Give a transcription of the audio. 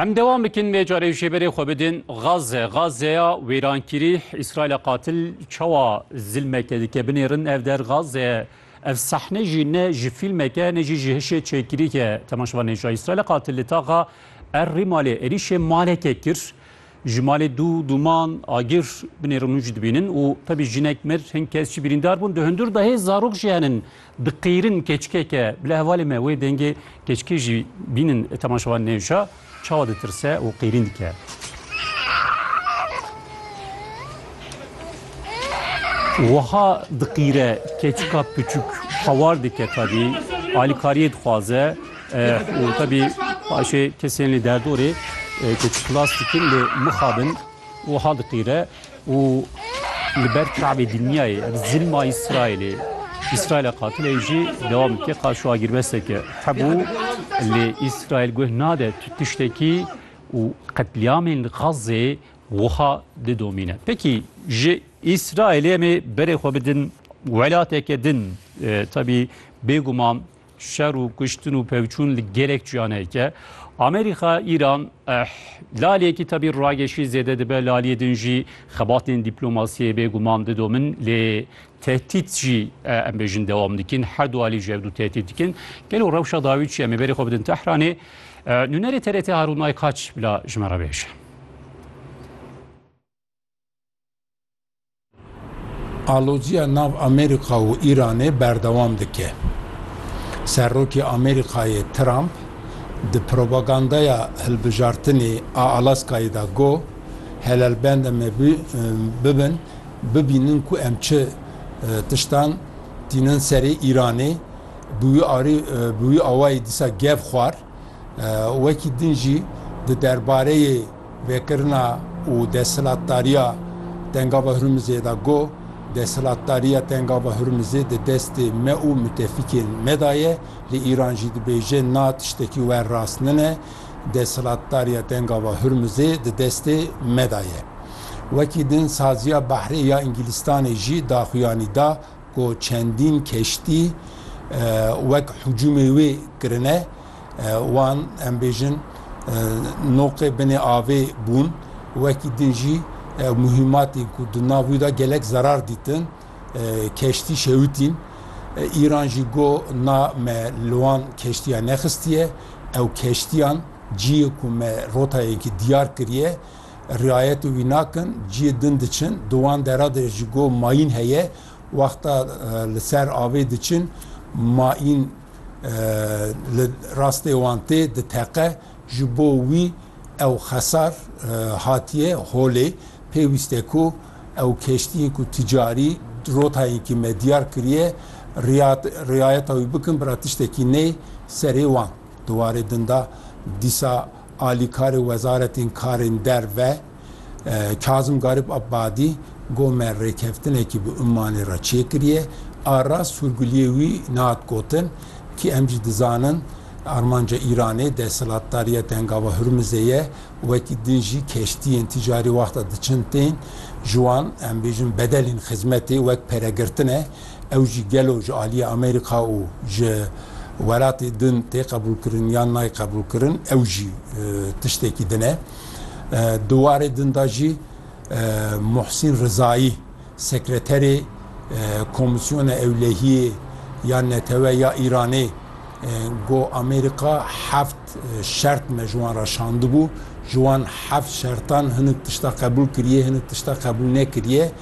Em dewam bikin vê carê jê berê xwe bidin Gaze. Gazeya wêrankirî Îsraîla qatil çawa zilmeke dike binêrin ev der Gaze. Ev sehne jî ne ji fîlmeke ne jî ji hişê çêkirîke temaşevan nêja. Îsraîla qatil li taxa Er Rîmalê êrîşê maleke kir. Ji malê dû dûman agir binê rûnû jî dibînin û tevî jinek mir hin kes jî birîndar bûn. Di hundir de hê zarok jî henin diqîrin keçikeke bila hevalê me wê dengê keçikê jî bînin temaşevan nêwşa çawa ditirse û qîrîn dike. Wiha diqîre keçika piçûk hewar dike tevî alîkariyê dixwaze. û tevî paşê kesên li derdorê ku çilas dikin li mixa bin wiha diqîre û li ber çavê dinyayê ev zilma Îsraîlê Îsraîla qatileyê jî dewam dike ka şu agîrbesteke hebû lê Îsraîl guh nade tu tiştekî û qetlîamên li Xazzê wiha didomîne. Pekî ji Îsraîlê em ê berê xwe bidin welateke din tevî bêguman Şer û kuştin û pevçûn li gelek çiyaneyek e. Amerîka, Îran laliyekî tevî rageşî zêde dibe, laliyê din jî xebatên dîplomasiyê bêguman didomin lê tehdît jî em bêjin dewam dikin. Her du alî ji hev du tehdît dikin. Gelo rewşa dawî çi em ê berê xwe bidin Tehranê. Nûnerê TRT Harûn Aykaç bila ji me re bêje. Alozîya nav Amerîka û Îranê berdewam dike. Serokê Amerîkayê Trump di propagandaya hilbijartinê a Alaskayê de got, Helelbende me bibin bibînin ku em çi tiştan tînin serê Îranê. Bi wî awayî dîsa gev xwar. Wekî din jî di derbareyê. Vekirina û desthilatdariya Tengava Hurmizê de got, Desthilatdariya Tengava Hurmizê di destê me û mitefikên me de ye, li Îran jî dibêje na tiştekî wer rast nine, desthilatdariya Tengava Hurmizê di destê me de ye. Wekî din saziya behrê ya Îngîlîstanê jî daxuyanî da, ku çendîn keştî wek hicûmê wê kirine, wan em bêjin noqê binê avê bûn, wekî din jî muhîmatên ku di nav wî de gelek zerar dîtin, keştî şewitîn. Îran jî got na me li wan keştiya nexistiye, ew keştiyan ciyê ku me rotayekî diyar kiriye, Riayetê wî nakin, ciyê din diçin, di wan dera de ji go mayîn heye, wexta li ser avê diçin, mayîn li rastê wan tê, diteqe, ji bo wî ew xesar hatiye holê, pêwîst e ku ew keştiyên ku ticarî rotayênkî me diyar kiriye, riayeta wî bikin, bira tiştekî neyê serê wan. Di warê din de dîsa. Alîkarê Wezaretên Karên Derve Kazim Garîb Abadî got me rêkeftinekî bi Ummanê re çêkiriye. A rast sûrguliyê wî nehat gotin kî em jî dizanin armanca Îranê desthilatdariya di hengava Hurmizê ye û wekî din jî keştiyên ticarî wexta diçin tên ji wan em bêjin bedelên xizmetê wek peregirtine ew jî gelo ji aliyê Amerîka û ji welatê din tê qebûlkirin yan nayê qebûlkirin ew jî tiştekî din e. Di warê din de jî Muhsîn Rizayî sekreterê Komîsyona Ewlehiyê ya Netewe ya Îranê got Amerîka heft şert me ji wan re şandibû, ji wan heft şertan hinek tişta qebûl kiriye hinek tişta qebûl nekiriye.